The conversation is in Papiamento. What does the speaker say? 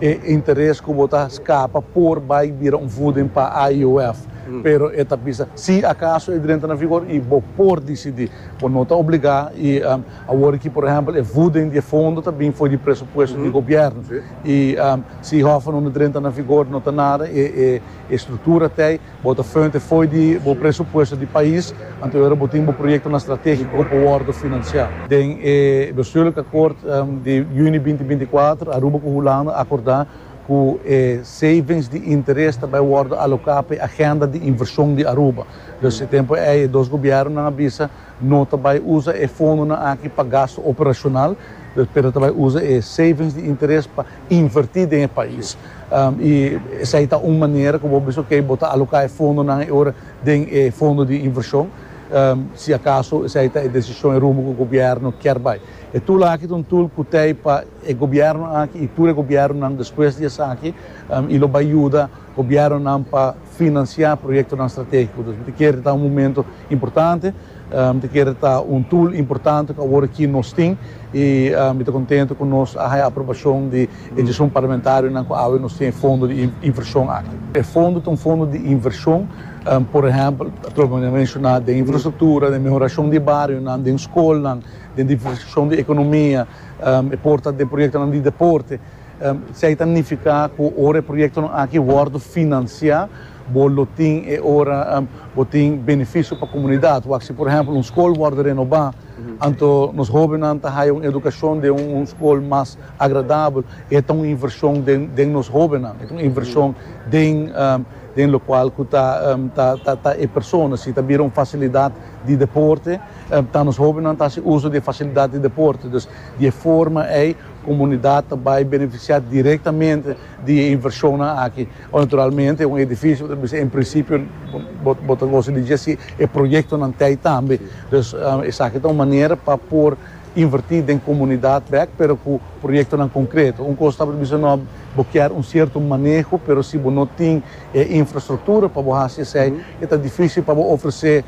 E interes ku bo ta skapa por bai bira un vuden pa IOF, pero e ta bisa si akaso e drenta na vigor i bo por disidí. Bo no ta obligá i awor ki por ehèmpel e vuden di e fondo ta bin for di presupuesto di gobièrnu i si Hòffa no na drenta na vigor no ta nada, e struktura t'ei. Bo ta fuente fo'i di bo presupuesto di pais, anto yora bo tin bo proyektonan strategiko ku por wòrdu finansiá. Den e bestuurlik akkoord di yüni binti binti kuater, Aruba ku Hulanda a akordá ku e savings di interes ta bai wòrdu aloká pa e agenda di invershon di Aruba. Dus e tempu ei e dos gobièrnunan a bisa no ta bai usa e fondonan aki pa gastu operashonal, pero ta bai usa e savings di interes pa. invertí den e pais. I esei ta un manera ku bo bisa oke bo ta aloká e fondonan e ora den e fondo di invershon si akaso esei ta e desishon e rumbo ku gobièrnu kier bai. E tul aki ta un tul ku ta e pa e gobièrnu aki i tur e gobièrnunan despues di esaki i lo bai yuda Gobiernonan pa financia proyectonan strategico. Mi ta kere ta un momento importante, mi ta kere ta un tool importante cu awor aki nos tin y mi ta contento cu nos a haya aprobacion di e diecion parlamentarionan cu awe nos tin e fondo di inversion aki. E fondo ta un fondo di inversion, por ehempel, atrobe manda menciona, den infrastructura, den mehoracion di barionan, den scolnan, den diversificacion di economia, e por ta den proyectonan di deporte. Esei ta nifiká ku ora e proyektonan aki wòrdu finansiá, bo lo tin e ora bo tin benefisio pa komunidat. Wak si por ehèmpel un skol wòrdu renobá, anto nos hóbennan ta haya un edukashon den un skol mas agradabel i e ta un invershon den nos hóbennan, e ta un invershon den lokual ku ta ta e persona. Si ta bira un fasilidat di deporte, ta nos hóbennan ta hasi uso di e fasilidat di deporte. Dus di e forma ei. Comunidad ta bay beneficia directamente di e inversionnan aki. Bo naturalmente un edificio ta bisa en principio bo bo ta goza di dje si e proyectonan t'ey tambe. Dus esaki ta un manera pa por inverti den comunidad bek pero cu proyectonan concreto. Un cos ta por bisa no bo kier un cierto maneho pero si bo no tin e infrastructura pa bo haci esey e ta dificil pa bo ofrece.